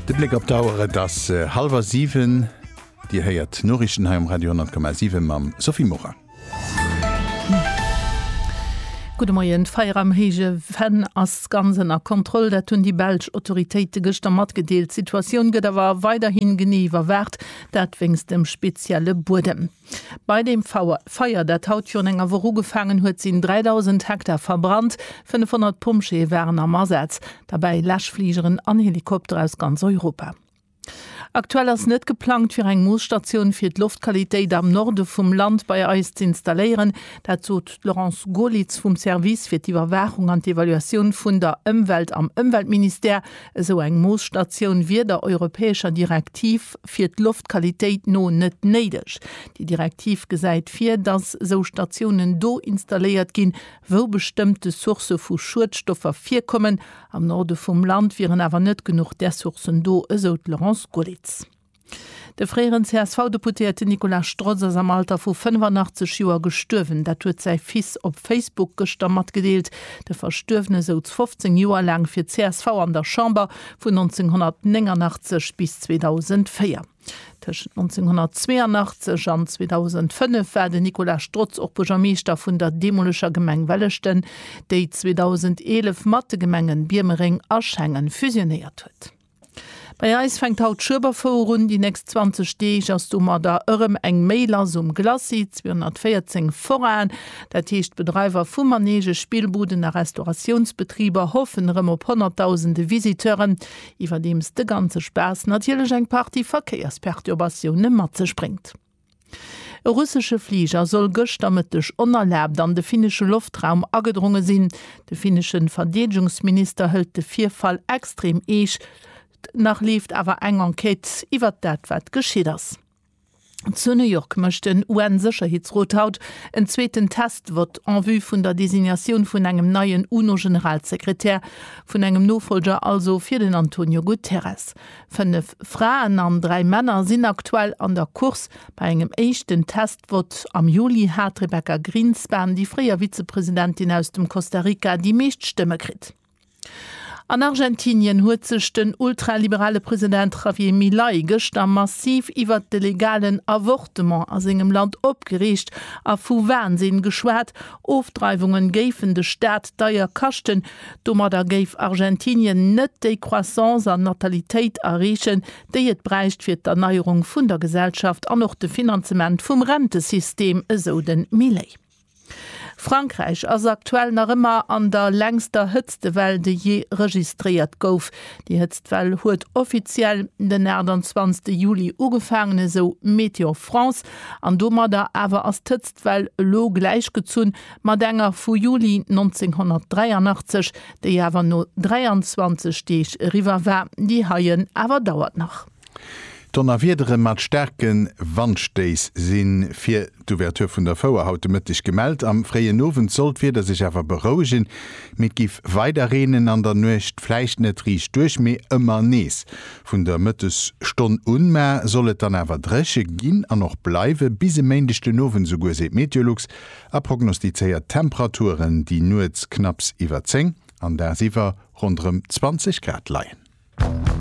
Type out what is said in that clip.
De Bléck op d'Auer, et ass hallwer siwen. Dir héiert d'Noriichten hei um Radio 10,7 mam Sophie Morang. Gudde Moien. D'Feier am Héije Venn ass ganz ënner Kontroll. Dat hunn déi belsch Autoritéite gëschter matgedeelt. D'Situatioun gëtt awer weiderhi genee iwwerwaacht, dat wéinst dem spezielle Buedem. Bei deem Feier, dat haut virun enger Woch ugefaangen huet, sinn 3.000 Hektar verbrannt. 500 Pompjeeë waren am Asaz, derbäi Läschfligeren an Helikopter aus ganz Europa. Aktuell ass net geplangt, fir eng Moosstatioun fir d'Loftqualitéit am Norde vum Land bei eis z'installéieren. Dat sot d'Laurence Goerlitz vum Service fir d'Iwwerwaachung an d'Evaluatioun vun der Ëmwelt am Ëmweltministère. Esou eng Moosstatioun wier der europäescher Direktiv fir d'Loftqualitéit no net néideg. Déi Direktiv gesäit vir, datt esou Statiounen do installéiert ginn, wou bestëmmte Sourcë vu Schuedstoffer virkommen. Am Norde vum Land wieren awer net genuch där Sourcen do, esou d'Laurence Gollitz. De fréieren CSV-Deputéierten Nicolas Strotz ass am Alter vu 85 Joer gestuerwen. Dat huet säi Fils op Facebook gëschter matgedeelt. De Verstuerwene souz 15 Joer laang fir csv an der Chamber, vun 1989 bis 2004. Tëschent 1982 an 2005 war de Nicolas Strotz och Buergermeeschter vun der deemoleger Gemeng Welleschten, déi 2011 mat de Gemengen Biermereng a Schengen fusionéiert huet. Bei eis fänkt haut d'Schueberfouer un. Déi nächst 20 Deeg ass domadder ërem eng méi lass um Glacis. 214 Forainen, dat heescht Bedreiwer vu Manege, Spillbuden a Restauratiounsbetriber, hoffen erëm op honnertdausende Visiteuren, iwwerdeems de ganze Spaass natierlech eng Partie Verkéiersperturbatioune mat sech bréngt. E russesche Fliger soll gëschter Mëtteg onerlaabt an de finnesche Loftraum agedronge sinn. De finnesche Verdeedegungsminister hëlt de Virfall extrem eescht. Nach leeft awer eng Enquête iwwert dat, wat geschitt ass. Zu New York mécht den UN-Sécherheetsrot haut en zweeten Test-Vott en vue vun der Designatioun vun engem neien UNO-Generalsekretär, vun engem Nofolger also fir den Antonio Guterres. Fënnef Fraen an dräi Männer sinn aktuell an der Course. Bei engem éischten Test-Vott am Juli hat d'Rebecca Grinspan, déi fréier Vizepresidentin aus dem Costa Rica, déi meescht Stëmme kritt. An Argentinien huet sech den ultraliberale President Javier Milei gëschter massiv iwwert de legalen Avortement a sengem Land opgereegt a vu Wahnsinn geschwat, Ofdreiwungen géifen de Staat deier kaschten. Domadder géif Argentinien net déi Croissance an Natalitéit erreechen, déi et bräicht fir d'Erneierung vun der Gesellschaft an och de Finanzement vum Rentesystem, esou de Milei. Frankräich ass aktuell nach ëmmer an der längster Hëtztewell, déi jee registréiert gouf. Déi Hëtztwell huet offiziell den 28 Juli ugefaangen, esou Météo France. An domadder awer ass d'Hëtztwell elo gläichgezunn mat enger vu Juli 1983, déi awer no 23 Deeg eriwwer war. Déi heien awer dauert nach. Donnerwiedere mat staarke Wandstéiss si fir d'Ouverture vun der Fouer haut de Mëtteg gemellt. Am fréien Owend soll d'Wieder sech awer berouegen, mee et géif weider reenen an der Nuecht, vläicht net riicht duerch, mee ëmmer nees. Vun der Mëttesstonn un ma soll et dann awer dréche ginn an och bleiwe bis e Méindeg den Owend esouguer, seet Meteolux a prognostizéiert Temperaturen, déi nuets knapps iwwer 10 an dagsiwwer ronderëm 20 Grad leien.